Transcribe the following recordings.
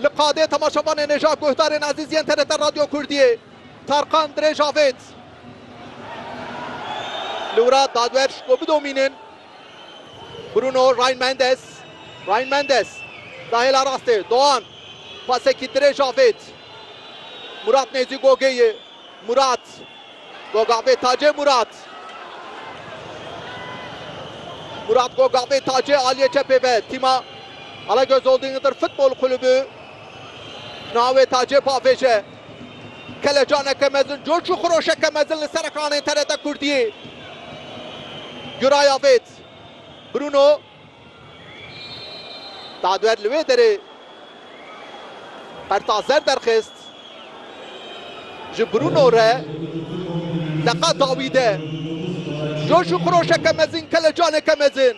Li qadê temaşevanê nêja guhdarên ezîz yên TRT Radyo Kurdiyê Tarkan dirêj avêt. Li wira dadwer ji ku bidomînin Bruno Ryan Mendes, Ryan Mendes, da hêla rastê, Doğan, pasekî dirêj avêt. Murat Nêzî Gogê yê Murat, Gogabê Tacê Murat, Murat Gogabê Tacê aliyê çepê ve tîma Alagöz Holding Hıdır Futbol Kulübü navê Tacê pavêje. Kelecaneke mezin, coş û xiroşeke mezin li ser ekranên TRT Kurdiyê. Guraya vêt Bruno. Dadwer li wê derê qerta zer derxist ji Bruno re. Deqa dawî de coş û xiroşeke mezin, kelecaneke mezin.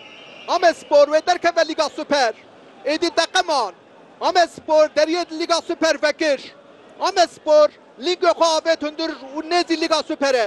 Amedspor wê derkeve Lîga Super. Êdî deqeman Amedspor deriyê di Lîga Super vekir. Amedspor lîngê xwe avêt hundir û nêzî Lîga Superê.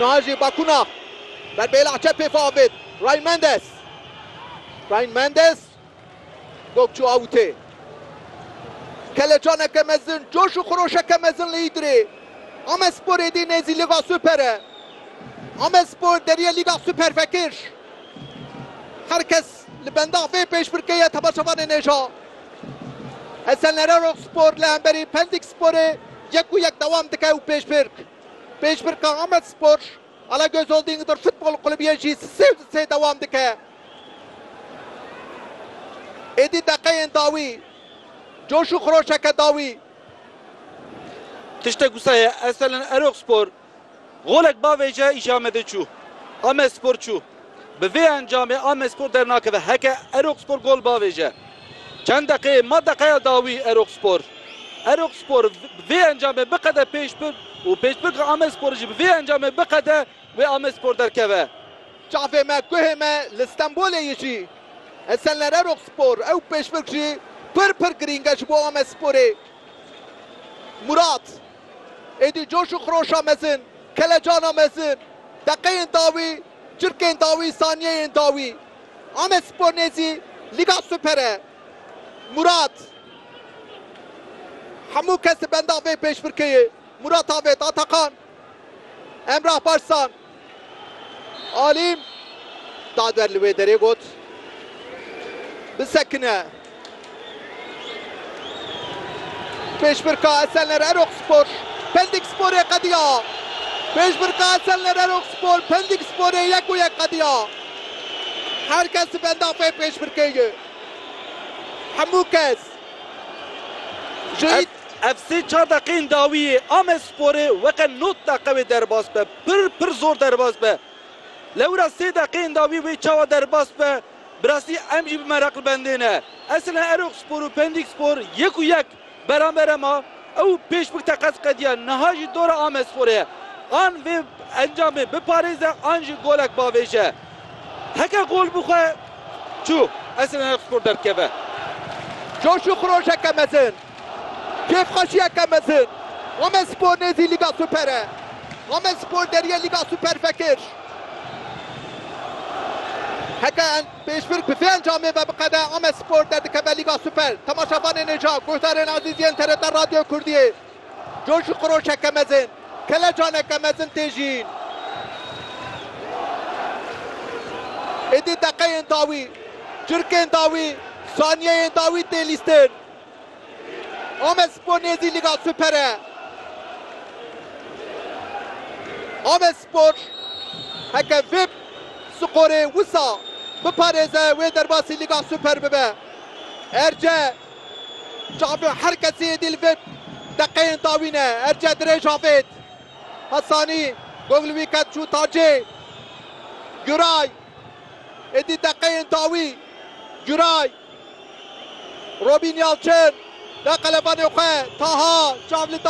Niha jî Bakuna ber bi hêla çepê xwe avêt. Ryan Mendes. Ryan Mendes gog çû awitê. Kelecaneke mezin, coş û xiroşeke mezin li Îdirê. Amedspor êdî nêzî Lîga Super e. Amedspor derîye Lîga Super vekir. Her kes li benda vê pêşbirkeyê ye temaşevanên êja. Esenlere Roxspor li hemberî Pendik Sporê yek û yek dewam dike û pêşbirk pêşbirka Amedspor Alagöz Holding Dur Futbol Kulübiyê jî sê li sê dewam dike. Êdî deqeyên dawî coş û xiroşeke dawî. Tiştek wisa ye Esenlere Roxspor Golek bavê ji Amedê çû. Amedspor çû. Bi vê encamê Amedspor dernakeve. Heke Erokspor gol bavêje. Çend deqeyê ma deqeya dawî Erokspor. Erokspor bi vê encamê biqede pêş bi û pêşbirka Amedspor jî bi vê encamê biqede wê Amedspor derkeve. Çavê me, guhê me li Stenbolê yê jî. Esenler Erokspor ew pêşbirk jî pir pir girîng e ji bo Amedsporê. Murat. Êdî coş û xiroşa mezin, kelecana mezin, deqeyên dawî, çirkên dawî, saniyeyên dawî. Amedspor nêzî Lîga Super e. Murat, Hemû kes li benda vê pêşbirkeyê. Murat Avêt, Atakan, Emrah Barzan. Alî da ber li wê derê got, Bisekine. Pêşbirka Esenler Erokspor, Pendik Sporê qediya. Pêşbirka Esenler Erokspor, Pendik Sporê yek û yek qediya. Her kes di benda vê pêşbirkê ye. Hemû kes ji Ev sê çar deqeyên dawî yê Amedsporê weqe not deqe wê derbas be. Pir pir zor derbas be. Lewra sê deqeyên dawî wê çawa derbas be bi rastî em jî bi meraq li bendê ne. Eslen Erokspor û Pendîkspor yek û yek beramber e ma. Ew pêş bi teqez qediya niha jî dora Amedsporê ye. An vê encamê biparêze an jî golek bavêje. Heke gol bixwe çû Eslen Erokspor derdikeve. Coş û xirojeke mezin. Kêfxweşiyeke mezin, Amedspor nêzî Lîga Super e. Amedspor deriyê Lîga Super vekir. Heke pêşbirk bi vê encamê ve biqede, Amedspor derdikeve Lîga Super. Temaşevanên êja, guhdarên ezîz yên TRT Radyoya Kurdiyê, coşîqroşeke mezin, kelecaneke mezin tê jiyîn. Êdî deqeyên dawî, çirkên dawî, saniyeyên dawî tê lîstin. Amedspor nêzî Lîga Super e. Amedspor heke vê skorê wisa biparêze wê derbasî Lîga Super bibe. Erce çavê her kesî êdî li vê deqeyên dawî ne. Erce dirêj avêt. Hasanî gog li wî ket çû tacê. Guray êdî deqeyên dawî. Guray Robîn Yalçin da qelebanê xwe, Taha çav li.